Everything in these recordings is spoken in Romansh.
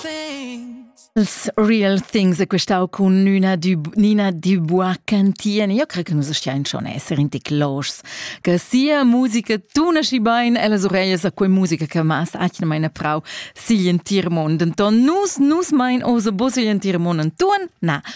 Things. Real Things è questau cun Nina Nina Dubois Cantien. Io cre che nus stian schon esser in tic los che sia musica tuna schi bein e las orejas a quei musica che mas atna meine Frau sigl entir mond. Enton nus nus mein oso bos sigl entir mond entun? Na,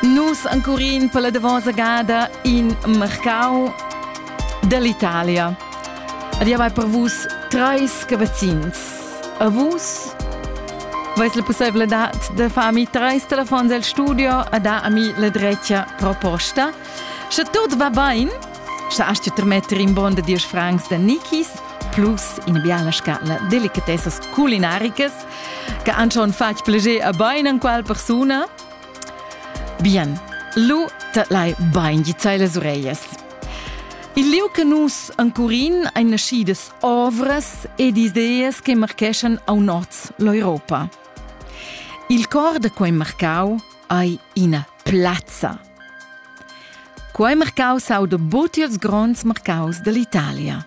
Nus ancurin per la davosa gada in mercau dall'Italia. Adia vai per vus treis cavazzins. A vus vais la possibilità de farmi treis telefons al studio a dar a mi la drecia proposta. Sche tot va bain, sche hast du trametter in bon de 10 francs de Nikis plus in biala scala delicatessas culinaricas che han schon fatg plascher a bein an qual persuna? Bien, lu te lai bein di sai las ureias. Il liu che nus ancurin ein nascidas ovras ed ideas che marcheschan au nord l'Europa. Il cor da quei marcau ei ina plazza. Quei marcau sauda buti els gronds marcaus dall'Italia.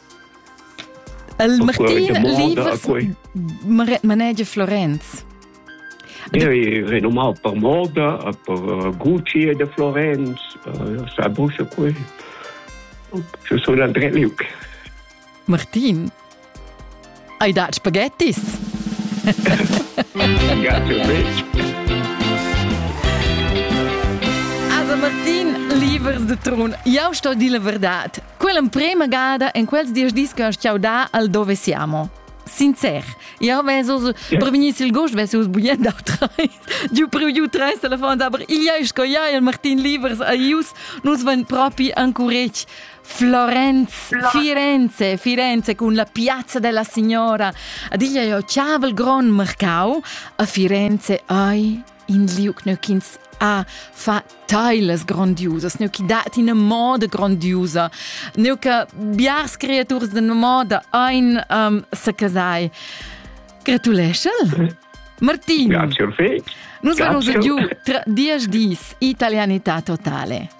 El Martin viva manegia Florenz. Ja, renomau per moda, per Gucci e de Florenz, sa busche qui. Je suis André Luc. Martin, Hai dat spaghettis? Also Martin, libers de Trun, jau sto dir la verdad. Quell'emprema gada en quels dies dis che ho stiau da al dove siamo. Sincer, io vesos per venir sil gost vesos bugnent dau treis. Giu priu giu treis telefons, aber igl sco ia il Martin Libers a ius, nus van propi ancuretg. Florenz, Firenze, Firenze cun la piazza della signora. Diglia jo chaval gron marcau, a Firenze ai in liuc nöchins a fa tailas grandiosas, neu che dat in moda grandiosa, neu che biars creaturs de moda ein um, se casai. Gratuleschel? Martin. Grazie, Orfei. Nus vamos giù tra dieci dis, italianità totale.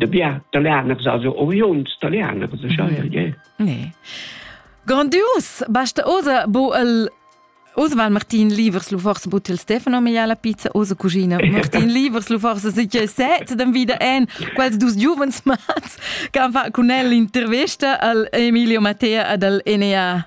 de bien talianers also oriuns talianers ne grandios basta osa bo el Oswald Martin Livers lu forse but il Stefano Maiala Pizza osa cucina Martin Livers lu forse si che set dem wieder en quels dus giuvens mats che han fa con el l'intervista al Emilio Mattea ad al NEA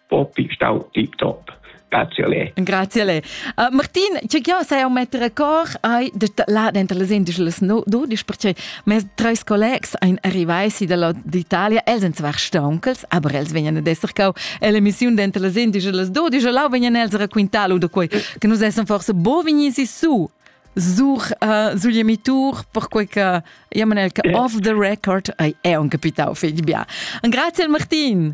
propi stau tiptop. Grazie a lei. Grazie a lei. Uh, Martin, ciao, sei un mettere cor hai detto là dentro le indischles no dudisch perché mes tre collegs ein arrivati dalla d'Italia, els sind zwar staunkels, aber els vegnan ad esser cau l'emissione dentro le indischles dudisch e là vegnan els racquintar da quei che nus essem forse bovinisi su sur uh, sugli emitur perquei che ja man el che off the record ei è un capitau fetg bia. Grazie Martin.